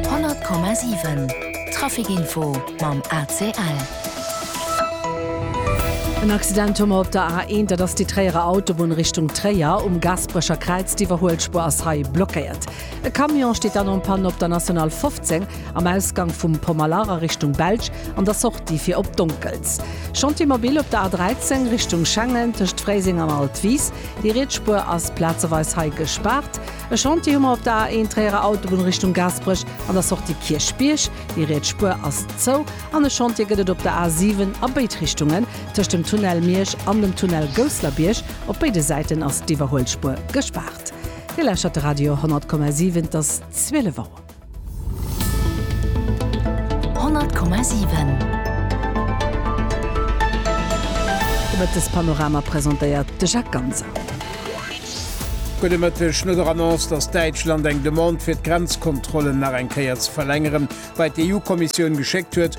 100,7 Traficinfo mam ACL. En Accident hu mer op der A1, dat ass déi Tréierer Autobunn Richtung Tréier. Um Gasperecher Kräiz, d'Iwwerhuelspur ass hei blockéiert. E Camion steet dann en panne op der National 15 am Ausgang vum Pomalar a Richtung Belsch an der Sortie fir op Donkels. Chantier mobil op der A13 Richtung Schengen tëscht Fréiseng an Altwiis. Déi riets Spur ass plazeweis hei gespaart. E Chantier hu mer op der A 1 Tréierer Autobunn Richtung Gaasperech an der Sortie Kierchbierg, déi riets Spuer ass zou, an e Chantier gëtt et op der A 7 a béid Richtungen, tëscht dem Tunnel Miersch an dem Tunnel Gousslerbierg. Op béide Säiten ass d'Iwwerhuelspuer gespaart. Dir lauschtert de Radio 100,7, et ass 12 Auer. Honnert Komma sieben. Mëttespanorama presentéiert de Jacques Ganser. Gudde Mëtteg. No der Annonce, datt Däitschland eng Demande fir d'Grenzkontrollen nach eng Kéier ze verlängeren bei d'EU-Kommissioun geschéckt huet,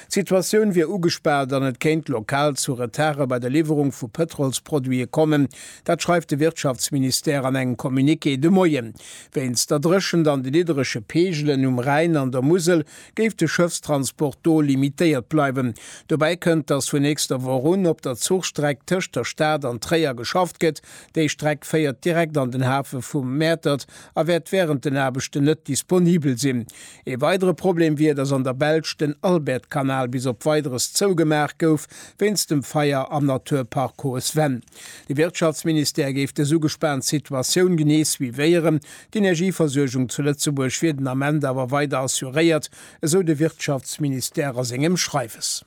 D'Situatioun wier ugespaant an et kéint lokal zu Retarde bei der Liwwerung vu Pëtrolsproduite kommen. Dat schreift de Wirtschaftsministère an engem Communiqué de Moien. Wéinst der Dréchent an de nidderege Peegelen um Rhäin an der Musel géif de Schëffstransport do limitéiert bleiwen. Dobäi kënnt, datt vun nächster Woch un op der Zuchstreck tëscht der Stad an Tréier geschafft gëtt. Déi Streck féiert direkt an den Hafe vu Mäertert a wäert wärend den Aarbechten net disponibel sinn. Ee weidere Problem wier, datt an der Belsch den Albertkanal bis op Weideres zougemaach gouf, wéinst dem Feier am Naturpark Hohes Venn. De Wirtschaftsministère géif dës ugespaant Situatioun genee suivéieren. D'Energieversuergung zu Lëtzebuerg wier den Ament awer weider assuréiert, esou de Wirtschaftsministère a sengem Schreiwes.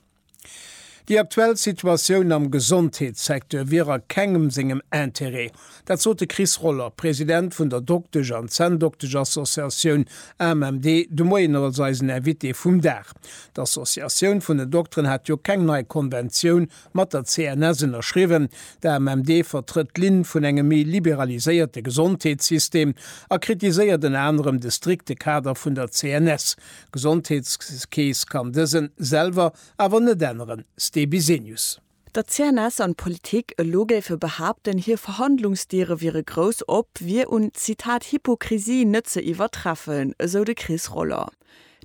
Déi aktuell Situatioun am Gesondheetssecteur wier a kengem sengem Interêt. Dat sot de Chris Roller, President vun der Doktesch an Zänndokteschassociatioun AMMD de Moien als eisen Invité vum Dag. D'Associatioun vun den Dokteren hat jo keng nei Konventioun mat der CNS ënnerschriwwen. D'AMMD vertrëtt d'Linn vun engem méi liberaliséierte Gesondheetssystem a kritiséiert ënner anerem de strikte Kader vun der CNS. D'Gesondheetskeess kann dësen selwer awer net änneren, Ste Bisenius. Datt CNS an d'Politik elo géife behaapten, hir Verhandlungsdiere wiere grouss op, wier un, Zitat, Hypokrisie net ze iwwertreffen, esou de Chris Roller.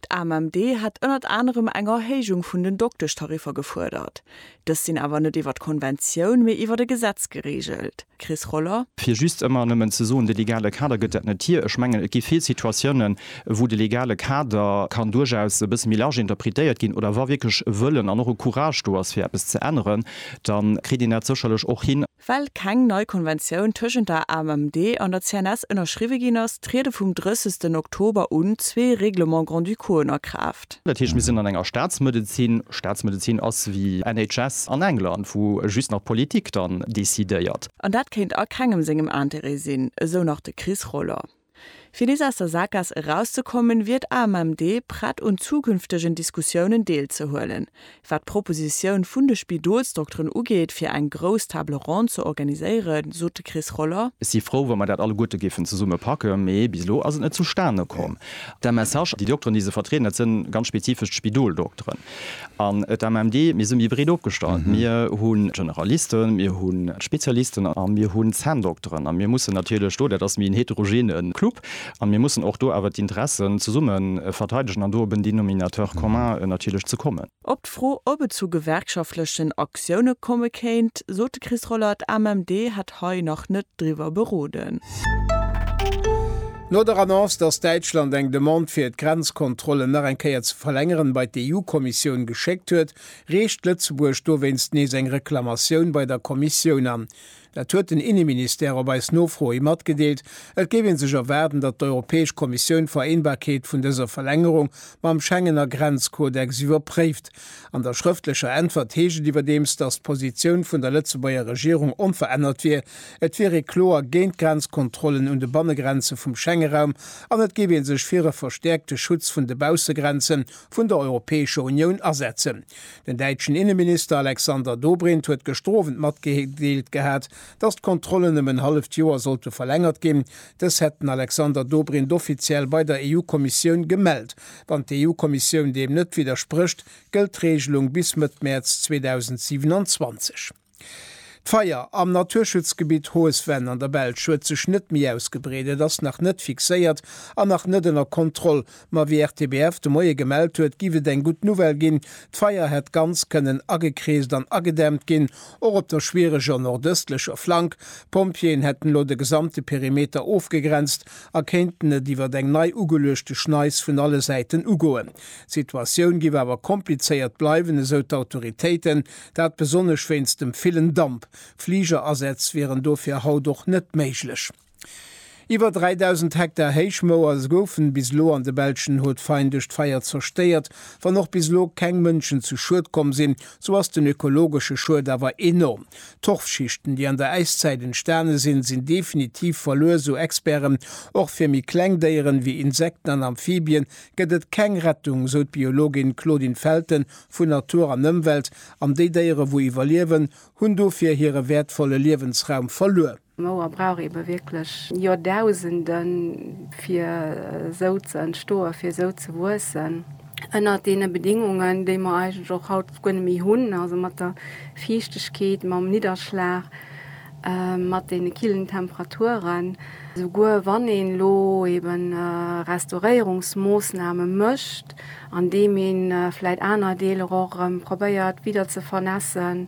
D'AMMD hätt ënnert anerem eng Erhéijung vun den Doktestariffer gefuerdert. Dës sinn awer net iwwer d'Konventioun, mee iwwer e Gesetz gereegelt. Chris Roller. Fir just ëmmer nëmmen ze soen, de legale Kader gëtt dat net hir. Ech mengen, et gi vill Situatiounen, wou de legale Kader kann duerchaus e bësse méi large interpretéiert ginn. Oder wa wierklech e Wëllen an och e Courage do ass, fir eppes ze änneren, da kritt een dat sécherlech och hin. Well keng nei Konventioun tëschent der AMMD an der CNS ënnerschriwwe ginn ass, triede vum 30 Oktober un zwee Règlements grand-ducauxen a Kraaft. Dat heescht, mir sinn an enger Staatsmedezin, Staatsmedezin ass wéi NHS an England, wou just nach d'Politik dann decidéiert. An dat kéint a kengem sengem Intérêt sinn, esou nach de Chris Roller. Fir nees aus der Saakgaass erauszekommen, wier d'AMMD prett un zukünftegen Diskussiounen deelzehuelen. Wat d'Propositioun vun de Spidolsdokteren ugeet, fir eng grouss Table ronde ze organiséieren, sot de Chris Roller. Ech si frou, wa mer dat alleguerte géifen zesumme packen, mee bis elo ass et net zustane komm. De Message, Déi Dokteren, déi se vertrieden, dat sinn ganz spezifesch d'Spidoldokteren. An d'AMMD, mir si méi breet opgestallt. Mir hu Generalisten, mir hu Spezialisten a mir hu Zänndokteren. A mir mussen natierlech do, dat ass méi en heterogene Club, a mir mussen och do awer d'Interessen zesumme verteidegen an do op en Denominateur commun natierlech ze kommen. Op d'Fro, ob et zu gewerkschaftlechen Aktioune komme kéint, sot de Chris Rollert, AMMD hätt hei nach net driwwer beroden. No der Annonce, datt Däitschland eng Demande fir et d'Grenzkontrollen nach eng Kéier ze verlängeren bei d'EU-Kommissioun geschéckt huet, reecht Lëtzebuerg dowéinst nees eng Reklamatioun bei der Kommissioun an. Dat huet den Inneministère op eis Nofro hi matgedeelt. Et géif ee sech erwaarden, datt d'Europäesch Kommissioun d'Vereenbarkeet vun dëser Verlängerung mam Schengener Grenzkodex iwwerpréift. An der schrëftlecher Äntwert heescht et iwwerdeems, datt d'Positioun vun der Lëtzebuerger Regierung onverännert wier, et wier ee kloer géint Grenzkontrollen un de Bannegrenze vum Schengeraum an et géif ee sech fir e verstäerkte Schutz vun de Baussegrenze vun der Europäescher Unioun asetzen. Den däitschen Inneminister Alexander Dobrindt huet gëschter Owend matgedeelt gehat, datt d'Kontrollen ëm en halleft Joer sollte verlängert ginn, Dës hätt den Alexander Dobrindt offiziell bei der EU-Kommissioun gemellt. Wann d'EU-Kommissioun deem net widdersprécht, gëllt d'Reegelung bis Mëtt Mäerz 2027. D'Feier am Naturschutzgebitt Hohes Venn an der Belsch huet sech net méi ausgebreet. Et ass nach net fixéiert an nach net ënner Kontroll, Ma wéi RTBF de Moie gemellt huet, giff et eng gutt Nouvelle ginn, d'Feier hätt ganz kënnen agekreest an agedämmt ginn, och op der schwiereger nordëstlecher Flank. D'Pompjeeën hätten elo de gesamte Perimeter ofgegrenzt a kéinten et iwwer eng nei ugeluechte Schneis vun alle Säiten ugoen. D'Situatioun giff awer komplizéiert bleiwen, esou d'Autoritéiten, dat besonnesch wéinst dem villen Damp. Fliger-Asätz wieren dofir haut och net méiglech. Iwwer 3.000 Hektar Héichmouer goufen bis elo an de belschen Haut-Fayn duerch d'Feier zerstéiert. Wann och bis elo keng Mënschen zu Schued komm sinn, sou ass den ökologesche Schued awer enorm. Torfschichten, déi an der Äiszäit entstane sinn, sinn definitiv verluer, sou Experten. Och fir méi kleng Déieren, wéi Insekten an Amphibien, gëtt et keng Rettung, sou d'Biologin Claudine Felten vu Natur an Ëmwelt. An déi Déiere wou iwwerliewen, hunn dofir hire wäertvolle Liewensraum verluer. D'Mauer brauch ebe wierklech Joerdausenden, fir esou ze entstoen, fir esou ze wuessen. Ënnert deene Bedingungen, déi mer eigentlech och haut guer net méi hunn, also mat der Fiichtegkeet, mam Nidderschlag, mat deene killen Temperaturen, souguer wann een elo ebe Restauréierungsmoossname mécht, andeem ee vläicht aner Deeler och erëm probéiert widder ze vernässen,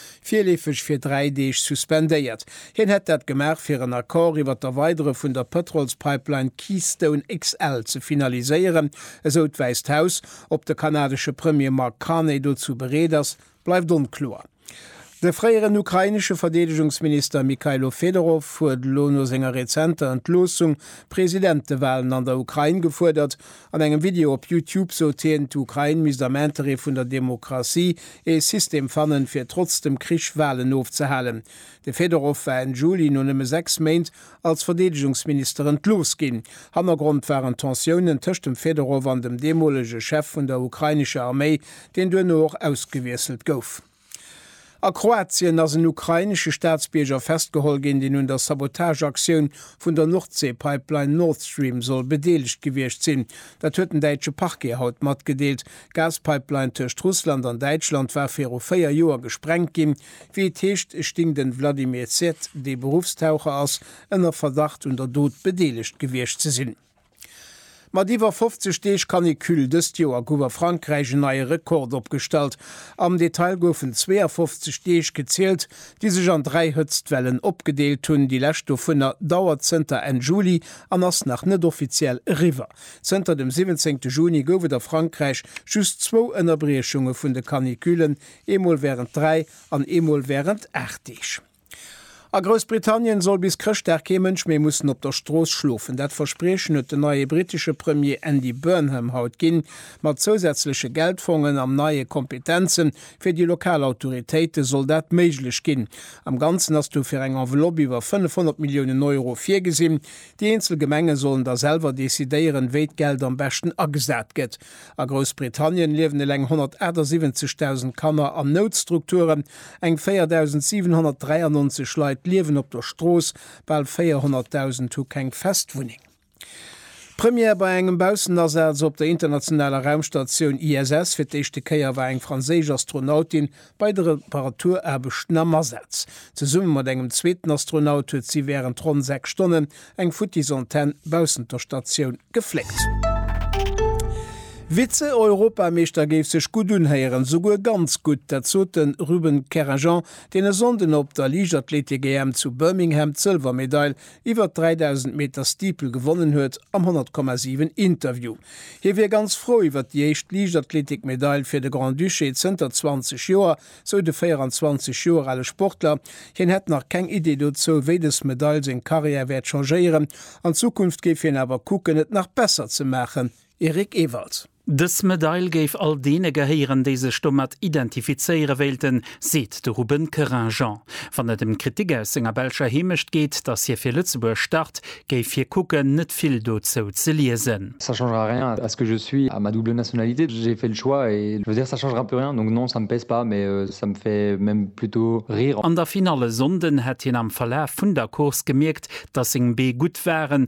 virleefeg fir dräi Deeg suspendéiert. Hien hätt dat gemaach, fir en Accord iwwer d'Erweidere vun der Pëtrolspipeline Keystone XL ze finaliséieren. Esou d'Wäisst Haus. Ob de kanadesche Premier Mark Carney dozou bereet ass, bleift onkloer. De fréieren ukrainesche Verdeedegungsminister Mykhailo Fedorov huet elo no senger rezenter Entloossung Presidentewalen an der Ukrain gefuerdert. An engem Video op Youtube sot hien, d'Ukrain misst am Interêt vun der Demokratie ee System fannen, fir trotz dem Krich Walen ofzehalen. De Fedorov war Enn Juli no nëmme sechs Méint als Verdeedegungsminister entlooss ginn. Hannergrond waren Tensiounen tëscht dem Fedorov an dem deemolege Chef vun der ukrainescher Arméi, deen duerno och ausgewiesselt gouf. A Kroatien ass en ukrainesche Staatsbierger festgeholl ginn, deen un der Sabotageaktioun vun der Nordseepipeline Nord Stream soll bedeelegt gewiescht sinn. Dat huet den däitsche Parquet haut matgedeelt. D'Gaspipeline tëscht Russland an Däitschland war viru véier Joer gesprengt ginn. Wéi et heescht, sting den Vladimir Zet, dee Beruffstaucher ass, ënner Verdacht un der Dot bedeelegt gewiescht ze sinn. Mat iwwer 50 Deeg Canicule dëst Joer gouf a Frankräich en neie Rekord opgestallt. Am Detail goufen 52 Deeg gezielt, déi sech an dräi Hëtztwellen opgedeelt hunn. Déi lescht dovunner dauert zënter Enn Juli an ass nach net offiziell eriwwer. Zënter dem 17 Juni gouf et a Frankräich just zwou Ënnerbriechunge vun de Caniculen, eemol wärend dräi an eemol wärend aacht Deeg. A Groussbritannien soll bis Chrëschtdag kee Mënsch méi mussen op der Strooss schlofen. Dat Verspriechen huet den neie brittesche Premier Andy Burnham haut ginn. Mat zousätzleche Geldfongen an neie Kompetenze fir déi lokal Autoritéite soll dat méiglech ginn. Am Ganzen ass dofir eng Enveloppe iwwer 500 Milliounen Euro virgesinn. Déi eenzel Gemenge sollen da selwer decidéieren, wéi d'Geld am beschten agesat gëtt. A Groussbritannien liewen eleng 178.000 Kanner an Noutstrukturen, eng 4.793 Leit liewen op der Strooss, bal 400.000 hu keng fest Wunneng. Première bei engem Baussenasaz op der internationaler Raumstatioun ISS, Fir d'éischte Kéier war eng franséisch Astronautin Bei de Reparaturaarbechten am Asaz, zesumme mat engem zweeten Astronaut, huet si wärend ronn 6 Stonnen eng futtis Antenn baussent der Statioun gefléckt. Vize-Europameeschter géif sech gutt unhéieren, souguer ganz gutt. Dat sot de Ruben Kerrejant, deen e Sonnden op der Liichtathleetik-EM zu Birmingham d'Sëlwermedail iwwert 3.000 Meter Steeple gewonnen huet am 100,7 Interview. Hie wier ganz frou iwwert déi éischt Liichtathletik-Medail fir de Grand-Duché zënter 20 Joer, sou de 24 Joer ale Sportler. Hien hätt nach keng Idee dozou, wéi dës Medail seng Karriär wäert changéieren. An Zukunft géif hien awer kucken, et nach besser ze maachen. Eric Ewald. Dës Medail géif all deene gehéieren, déi sech domat identifizéiere wéilten, seet de Ruben Keren. Jean, wann et ëm Kritik aus senger belscher Heemecht geet, datt hie fir Lëtzebuerg start, géif hie kucken, net vill dozou ze liesen. Ça changera rien à ce que je suis, à ma double nationalité. J'ai fait le choix et je veux dire ça changera plus rien, donc non ça me pèse pas, mais ça me fait même plutôt rire. An der Finall e Sonnden hätt hien am Verlaf vun der Course gemierkt, datt seng Bee gutt waren,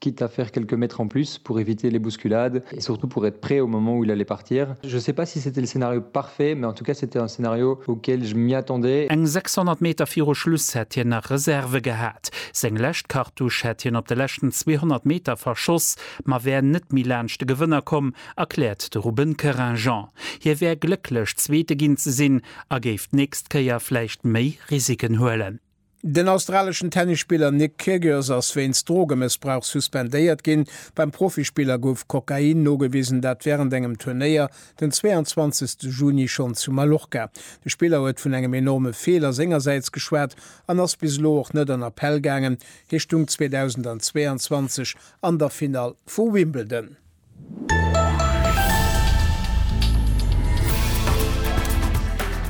Quitte à faire quelques mètres en plus pour éviter les bousculades et surtout pour être prêt au moment où il allait partir. Je sais pas si c'était le scénario parfait, mais en tout cas c'était un scénario auquel je m'y attendais. Eng 600 Meter viru Schluss hätt hien nach Reserve gehat. Seng lescht Cartouche hätt hien op de leschten 200 Meter verschoss, ma wär net méi laanscht de Gewënner komm, erkläert de Ruben Kerinjan. Hie wär glécklech Zweete ginn ze sinn a géif d'nächst Kéier vläicht méi Risiken huelen. Den australeschen Tennisspiller Nick Kyrgios ass wéinst Drogemëssbrauch suspendéiert ginn. Beim Profispiller gouf Kokain nogewisen, dat wärend engem Turnéier den 22 Juni schonn zu Mallorca. De Spiller huet vun engem enorme Feeler sengersäits geschwat an ass bis elo och net an Appell gaangen. Hie stung 2022 an der Finall vu Wimbledon.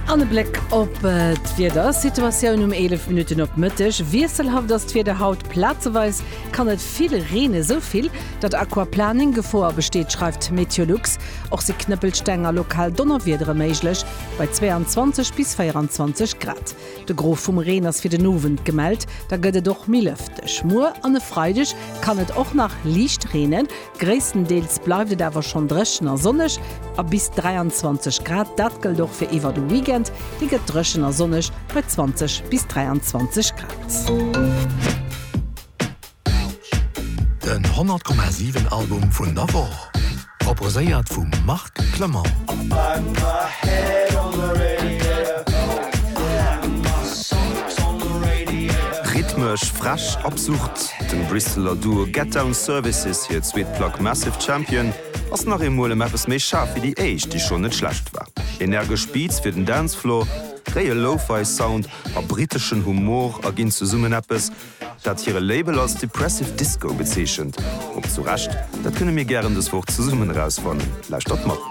An e Bléck op d'Wiedersituatioun um 11 Minutten op Mëtteg. Wiesselhaft ass d'Wieder haut, plazeweis kann et vill reenen, sou vill, datt Aquaplaning Gefoer besteet, schreift Meteolux. Och si Knëppelsteng a lokal Donnerwiedere méiglech bei 22 bis 24 Grad. De Gros vum Reen ass fir den Owend gemellt, da gëtt et och méi lëfteg. Muer an e Freideg kann et och nach liicht reenen, gréisstendeels bleift et awer schonn dréchen a sonneg a bis 23 Grad. Dat gëllt och fir iwwer de Weekend, dee gëtt dréchen a sonneg bei 20 bis 23 Grad. Den 100,7 Album vun der Woch, proposéiert vum Marc Clement. Rhythmesch, frech, absurd, dem Brisseler Duo Get Down Services hir zweet Plack Massive Champion ass nach eemol ëm eppes méi schaarf wéi déi éischt, déi schonn net schlecht war. Energesch Beats fir den Dancefloor, réie Lo-Fi Sound a briteschen Humor erginn zesummen eppes, dat hire Label als Depressive Disco bezeechent. Ob zu Recht, dat kënne mir gären dës Woch zesummen erausfannen. Lauschtert mat!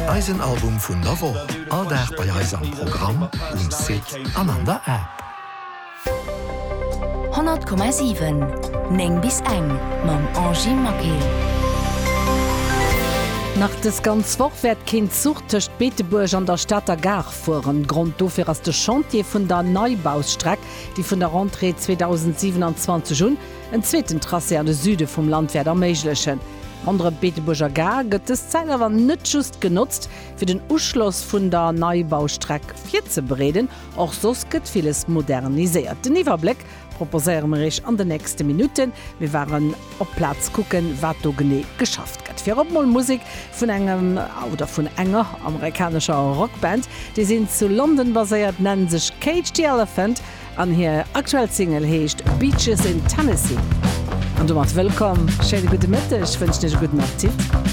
Eisen Album vun der Woch, all Dag bei eis am Programm, um Site an an der App. 100,7 9 bis eng mam Angy Maquet. Nach dës ganz Woch wäert keen Zuch tëscht Beetebuerg an der Stater Gare fueren. Grond dofir ass de Chantier vun der Neibausstreck, déi vun der Rentrée 2027 un en zweeten Tracé an de Süde vum Land wäert erméiglechen. Ronderëm d'Beetebuerger Gare gëtt dës Zäit awer net just genotzt, fir den Uschloss vun der Neibaustreck virzebereeden, och soss gëtt villes moderniséiert. Den Iwwerbléck Proposéiere mer iech an den nächste Minutten. Mir waren op Plaz kucken, wat do genee geschafft gëtt. Virop mol Musek vun engem oder vun enger amerikanescher Rockband. Déi sinn zu London baséiert, nennen sech Cage the Elephant an hir aktuell Single heescht Beaches in Tennessee. An domat wëllkomm, schéine gudde Mëtteg, wënschen iech e gudden Appetit.